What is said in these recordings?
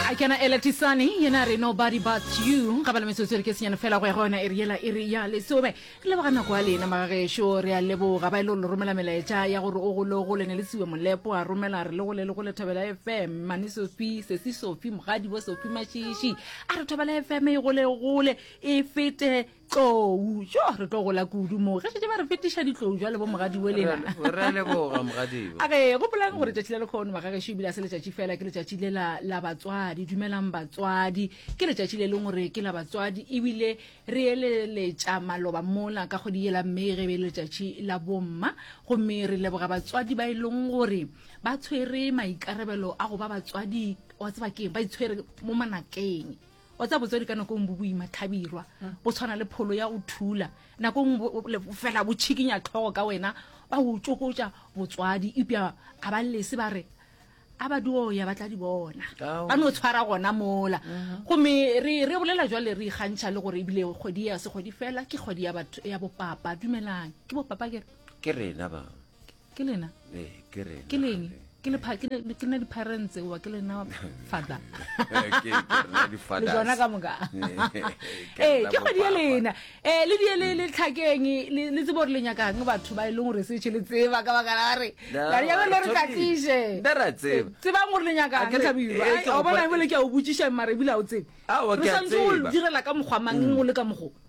a kena ela tisane yena re nobody but you ga ba le metsotso re ke senyane fela go ya go yona e re yela e re ya lesome re leboga nako a lena magagešo re a leboga ba e le gore le romela melaetša ya gore o gole o gole ne le siwe molepo a romela re le gole le gole thobela fm mane sofi sesi sofi mogadi bo sofi mašiši a re thobela fm e gole e gole e fete tlou jo re tlo gola kudu moo ge šetse ba re fetiša ditlou jwa lebo mogadiwe lena re a leboga mogadiwe a re gopolang gore tšatši la lekgono magagešo ebile a se letšatši fela ke letšatši le la la batswadi dumelang batswadi ke letšatši le leng gore ke la batswadi ebile re eleletša maloba mola ka kgwedi yela mme ge be le letšatši la bomma gomme re leboga batswadi ba e leng gore ba tshwere maikarabelo a go ba batswadi wa tseba keng ba itshwere mo manakeng wa tsa botswadi ka nako e ngwe bo boima tlhabirwa go tshwana le pholo ya go thula nako e ngwe fela bo tšhikinya tlhogo ka wena ba o tsokotša botswadi epja ga ba lese ba re a ba dio ya ba tla di bona ba no tshwara gona mola mm-hmm. gomme re bolela jwale re ikgantšha le gore ebile kgwedi ya se kgwedi fela ke kgwedi ya bopapa dumelang ke bopapa kere ke rena ba ke lena ke leng ke lena diphareng tseoa ke lena father le tsona ka moka ee ke kgwedi e lena um le die le tlhakeng le tsebo gore le nyakang batho ba e leng gore setshe le tseba ka baka la gore laeae le re tlatliše tsebang gore le nyakang tlhabirwa bona ebole ke a o botsišang mare ebile a o tsebe re santse o direla ka mokgwa mang o le ka mokgwa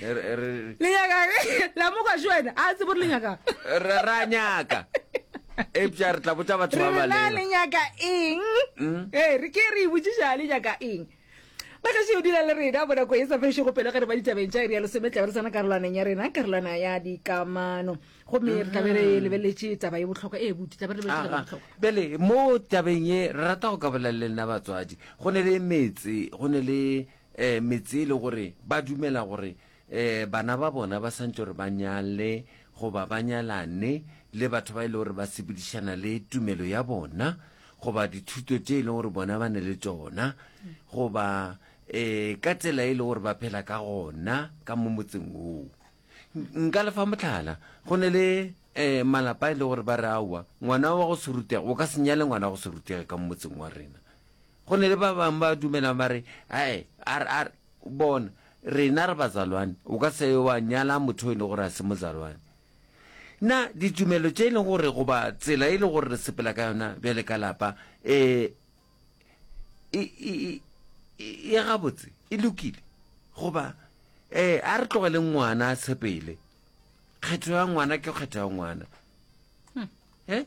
lenyakalemoka je wena a tsebo re lenyaka re ra nyaka epša re tla botsa batho ba balela le nyaka eng hmm? ee re ke re botsiša le nyaka eng magaše o dula le rena bona ko e sa fešego pelo ge re ba ditabeng tša ere ya lesome tlabe re tsena karolwaneng ya rena karolwana ya dikamano gomme re tlabe re hmm. lebeletse taba ye bohlokwa e bute tlabe re lebeletse bele mo tabeng ye re rata go ka bolela le nna batswadi go ne le metse go ne le um metse e le gore ba dumela gore um bana ba bona ba swantse gore ba nyale goba ba nyalane le batho ba e le gore ba sepedišana le tumelo ya bona goba dithuto tše e leng gore bona ba ne le tsona goba um ka tsela e le gore ba phela ka gona ka mo motseng woo nka lefa motlhala go ne le um malapa e le gore ba re aowa ngwana wa go serutege o ka senyale ngwana wa go serutege ka mo motseng wa rena Go na le ba bangwe ba dumelang ba re, Ae, a re, a re, bona, rena re bazalwane, o ka se wa nyala motho e le gore a se mozalwane. Na ditumelo tše e leng gore goba tsela e le gore re sepela ka yona bjale ka lapa e, e, e, e, e gabotse e lokile goba e, a re tlogele ngwana a sepele. Kgetho ya ngwana ke kgetho ya ngwana. Hmm. Eh?